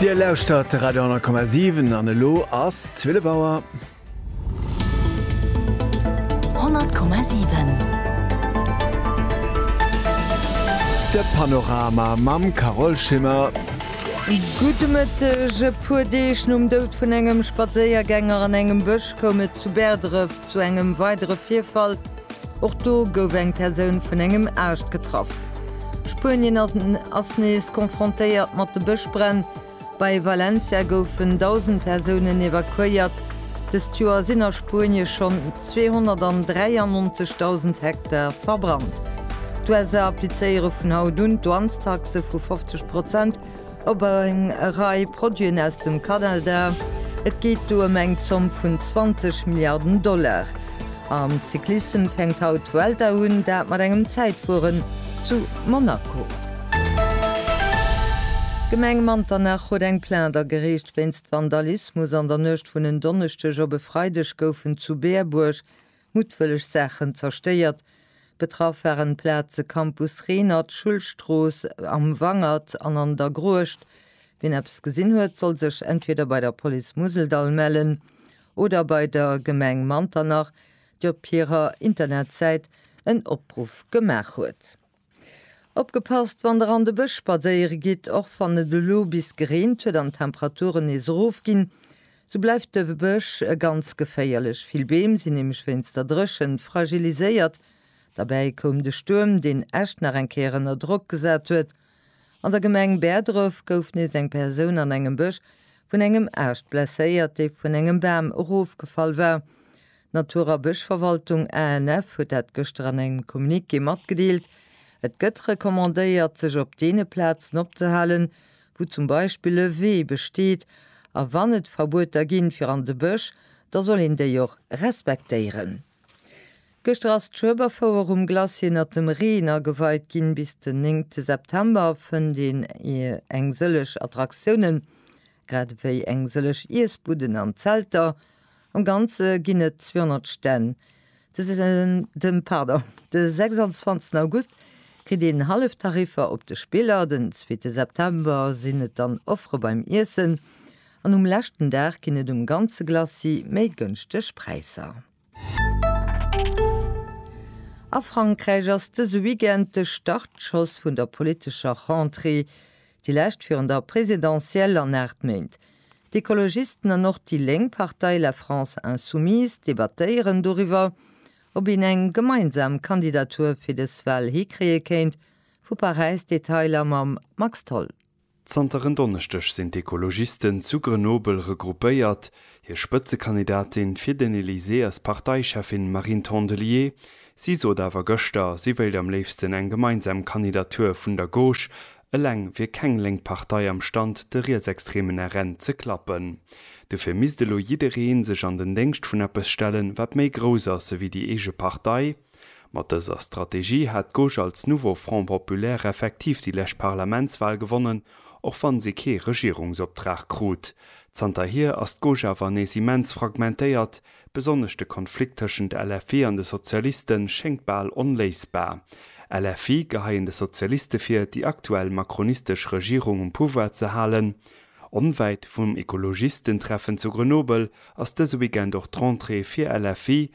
Dir lauschtert de Radio 10,7 an elo ass 12 Auer. 100,7 De Panorama mam Carole Schimmer. Gudde Mëtteg. E puer Deeg nom Dout vun engem Spadséiergänger an engem Bësch koum et zu Bäerdref zu engem weidere Virfall. Och do gouf eng Persoun vun engem Aascht getraff. Spuenien ass nees confrontéiert mat de Bëschbränn. Bei Valencia goufen 1.000 Persounen evakuéiert. Dëst Joer sinn a Spuenie schonn 293.000 Hektar verbrannt. D'USA applizéiere vun haut un d'Douanestaxe vu 50 Prozent. op eng Rei Produiten aus dem Kanada. Et geet do ëm eng Zomm vun 20 Milliarden Dollar. Am Cyclissem fänkt haut d'Vuelta un, dat mat engem Zäitfueren zu Monaco. D'Gemeng Manternach huet eng Plainte agereecht wéinst Vandalismus. An der Nuecht vun en Donneschdeg op e Freideg goufen zu Berbuerg Muttwëlleg Saachen zerstéiert. Betraff waren d'Plaze Campus Renert, Schullstrooss, Am Wangert an an der Gruecht. Wien eppes gesinn huet, soll sech entweder bei der Police Museldall mellen oder bei der Gemeng Manternach, déi op hirer Internetsäit en Opruff gemaach huet. Opgepasst wann der an de Bësch spadséiere gitt, Och wann et elo bis gereent huet an d'Temperaturen nees erof ginn, sou bleift de Bësch ganz geféierlech. Vill Beem sinn nämlech wéinst der Dréchent fragiliséiert. Derbäi koum de Stuerm, deen Esch nach eng Kéier ënner Drock gesat huet. An der Gemeng Bäerdref gouf nees eng Persoun an engem Bësch vun engem Aascht blesséiert, dee vun engem Bam erofgefall war. D'Natur a Bëschverwaltung, ANF, huet dat gëschter an engem Communiqué matgedeelt. Et gëtt recommandéiert, sech op deene Plazen opzehalen, wou zum Beispill e Wee besteet. A wann et Verbueter ginn, fir an de Bësch, da soll een déi och respektéieren. Gëschter ass d'Schueberfouer um Glacier ënnert dem Reen ageweit ginn. Bis den 9 te September fënnt een eng sëllech Attraktiounen, grad ewéi eng sëllech Iessbudden an Zelter. Am Ganze ginn et 200 Stänn. De pardon, de 26 August kritt een hallef Tariffer op de Spiller, den zweete September sinn et dann Offere beim Iessen An um leschten Dag ginn et um ganze Glacis méi gënschteg Präisser. A Frankräich ass dëse Weekend de Startschoss vun der politescher Rentrée, déi lescht virun der Presidentielle an aacht Méint. D'Ekologisten an och déi lénk Partei La France Insoumise debattéieren doriwwer, ob een eng gemeinsam Kandidatur fir dës Wal hikréie kéint. Vu Paräis d'Detailer mam Max Tholl. Zanter en Donneschdeg sinn d'Ekologisten zu Grenoble regroupéiert. Hir Spëtzekandidatin fir den Elysée ass d'Parteicheffin Marine Tondelier. Si sot awer gëschter, si wéilt am léifsten eng gemeinsam Kandidatur vun der Gauche. Eleng wier keng lénk Partei am Stand, de rietsextremen RN ze klappen. Dofir misst elo jidderee sech an den Déngscht vun eppes stellen, wat méi grouss ass ewéi déi eege Partei. Mat dëser Strategie hat d'Gauche als Nouveau Front Populaire effektiv déi lescht Parlamentswal gewonnen, och wann si kee Regierungsoptrag krut. Zanterhier ass d'Gauche awer nees immens fragmentéiert, besonnesch de Konflikt tëschent LFI an de Sozialiste schéngt bal onléisbar. LFI geheien de Sozialiste vir, déi aktuell macronistesch Regierung um Pouvoir ze halen. Onwäit vum Ecologistentreffen zu Grenoble ass dëse Weekend och d'Rentrée fir LFI.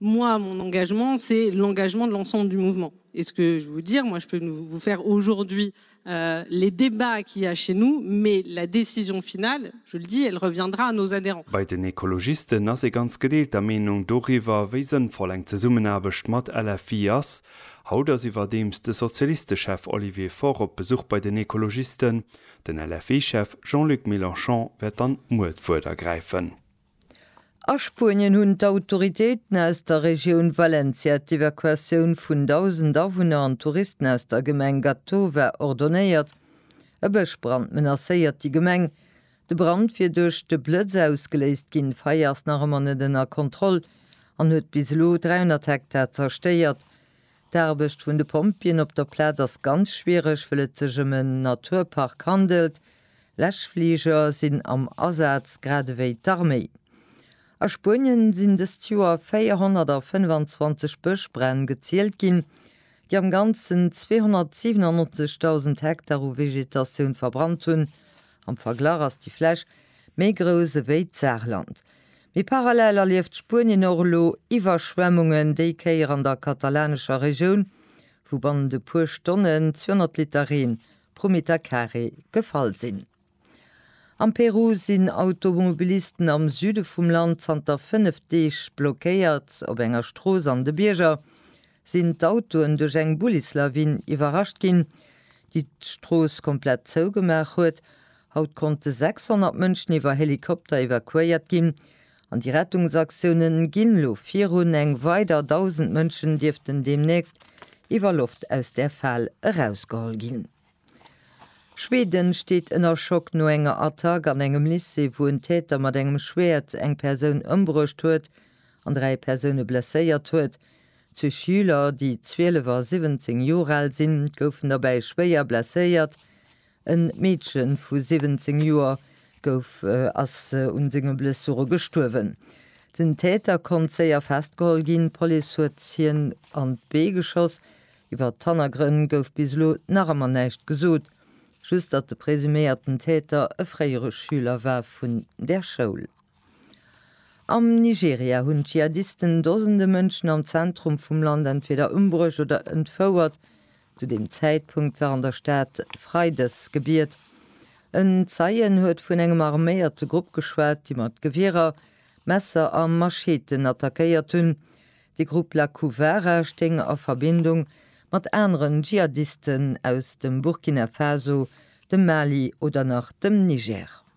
Moi, mon engagement, c'est l'engagement de l'ensemble du mouvement. Et ce que je veux vous dire, moi, je peux vous faire aujourd'hui euh, les débats qu'il y a chez nous, mais la décision finale, je le dis, elle reviendra à nos adhérents. Bei den Ekologisten ass ee ganz gedeelter Meenung doriwwer, wéi sënnvoll eng Zesummenaarbecht mat LFI ass. Haut ass iwwerdeems de Sozialistechef Olivier Faure op Besuch bei den Ekologisten. Den LFI-Chef Jean-Luc Mélenchon wäert dann muer d'Wuert ergräifen. A Spuenien hunn d'Autoritéiten aus der Regioun Valencia d'Evakuatioun vun 1.000 Awunner an Touristen aus der Gemeng Gàtova ordonéiert. E Bëschbrand menacéiert déi Gemeng. De Brand wier duerch de Blëtz ausgeléist ginn. D'Feier ass nach ëmmer net ënner Kontroll an huet bis elo 300 Hektar zerstéiert. D'Aarbecht vun de Pompjeeën op der Plaz ass ganz schwiereg, wëll et sech ëm en Naturpark handelt. Läschfliger sinn am Asaz, grad ewéi d'Arméi. A Spuenien sinn dëst Joer 425 Bëschbränn gezielt ginn, déi am Ganzen 297.000 Hektar u Vegetatioun verbrannt hunn. Am Verglach ass déi Fläch méi grouss ewéi d'Saarland. Mee parallel erlieft Spuenien och elo Iwwerschwemmungen, déi Kéier an der katalanescher Regioun, wou bannent e puer Stonnen 200 Liter Reen Prometa Carré gefall sinn. Am Peru sinn Automobilisten am Süde vum Land zanter 5 Deeg blockéiert. Op enger Strooss an de Bierger sinn d'Autoen duerch eng Bullislawin iwwerrascht ginn, déi d'Strooss komplett zougemaach huet. Haut konnte 600 Mënschen iwwer Helikopter evakuéiert ginn, An déi Rettungsaktiounen ginn elo virun. Eng weider 1.000 Mënschen dierften deemnächst iwwer Loft aus der Fal erausgeholl ginn. Schweden steet ënner Schock no enger Attack an engem Lycée, wou en Täter mat engem Schwäert eng Persoun ëmbruecht huet an dräi Persoune blesséiert huet. Zwee Schüler, déi 12 a 17 Joer al sinn, goufen derbäi schwéier blesséiert. E Meedche vu 17 Joer gouf ass un senge Blessure gestuerwen. Den Täter konnt séier festgeholl ginn. D'Police huet hien an d'Bee geschoss. Iwwert d'Hannergrënn gouf bis elo nach ëmmer näischt gesot, just datt de presuméierten Täter e fréiere Schüler war vun där Schoul. Am Nigeria hunn d'Dschihadisten Dosende Mënschen am Zentrum vum Land entweder ëmbruecht oder entfouert. Zu deem Zäitpunkt war an der Stad Freidesgebiet. En Zeien huet vun engem arméierte Grupp geschwat, déi mat Gewierer, Messer a Macheeten attackéiert hunn. De Grupp Lakouwara stéing a Verbindung mat aneren Dschihadisten aus dem Burkina Faso, dem Mali oder nach dem Niger.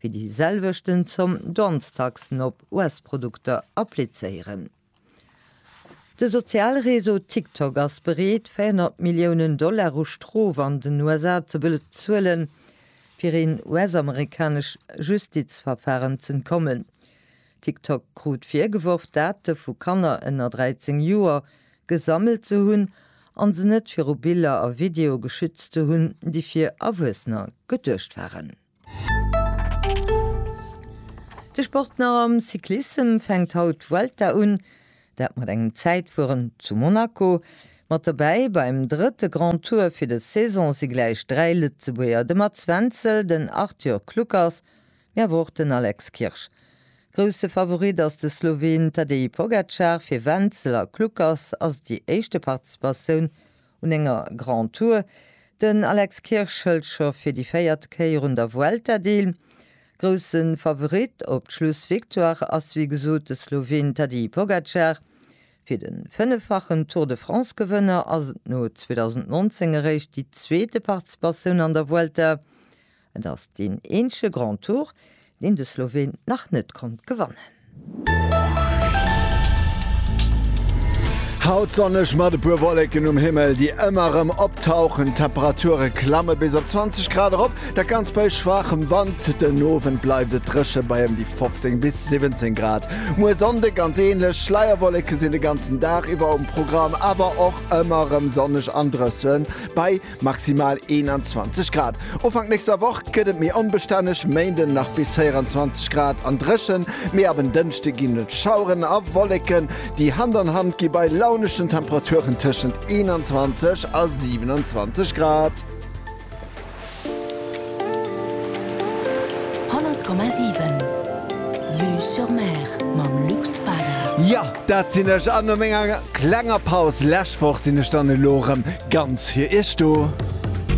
fir déi selwechten Zomm Douanestaxen op US-Produkter applizéieren. De Sozialreseau TikTok ass bereet 400 Milliounen Dollar u Strof an den USA ze bezuelen, fir een US-amerikanesch Justizverfaren z'entkommen. TikTok krut virgeworf, Date vu Kanner ënner 13 Joer gesammelt ze hunn an se net viru Biller a Videoe geschützt ze hunn, déi fir Erwuessener geduecht waren. De Sport nach am Cyclissem fänkt haut d'Vuelta un, dat mat engem Zäitfueren zu Monaco. Mat dobäi beim drëtte Grand Tour fir des Saison si gläich dräi Lëtzebuerger, de Mats Wenzel, den Arthur Kluckers, mee awer och den Alex Kirsch. Grousse Favorit ass de Sloween Tadej Pogacar, fir Wenzel a Kluckers ass et déi éischte Participatioun Un enger Grand Tour den Alex Kirsch hëlt scho fir déi véiert Kéier un der Vuelta deel. Grousse Favorit op d'Schlussvictoire ass wéi gesot de Sloween Tadej Pogacar. Fir de fënneffachen Tour de France-Gewënner ass et no 2019 eréischt déi zweete Participatioun an der Vuelta. Et ass deen eenzege Grand Tour, deen de Sloween nach net konnt gewannen. Haut sonneg mat e puer Wolleken um Himmel, déi ëmmer erëm optauchen. D'Temperature klamme bis op 20 Grad erop, dat Ganzt bei schwaachem Wand. Den Owend bleift et dréche bei ëm déi 15 bis 17 Grad. Muer Sonnde ganz änlech, Schleierwolleke sinn de ganzen Dag iwwer um Programm, awer och ëmmer erëm sonneg an drësse bei Maximal 21 Grad. Ufank nächster Woch gëtt et méi onbestänneg, Méinden nach bis 24 Grad an dréchen, mee ab en Dënschde ginn et Schaueren a Wolleken, déi Hand an Hand gi bei launeschen Temperaturen tëschent 21 a 27 Grad. Honnert Komma siwen, Vue sur Mer mam Luc Spada. Jo, dat sinn ech, an no menger klenger Paus lech Woch sinn ech dann elo erëm ganz fir Iech do.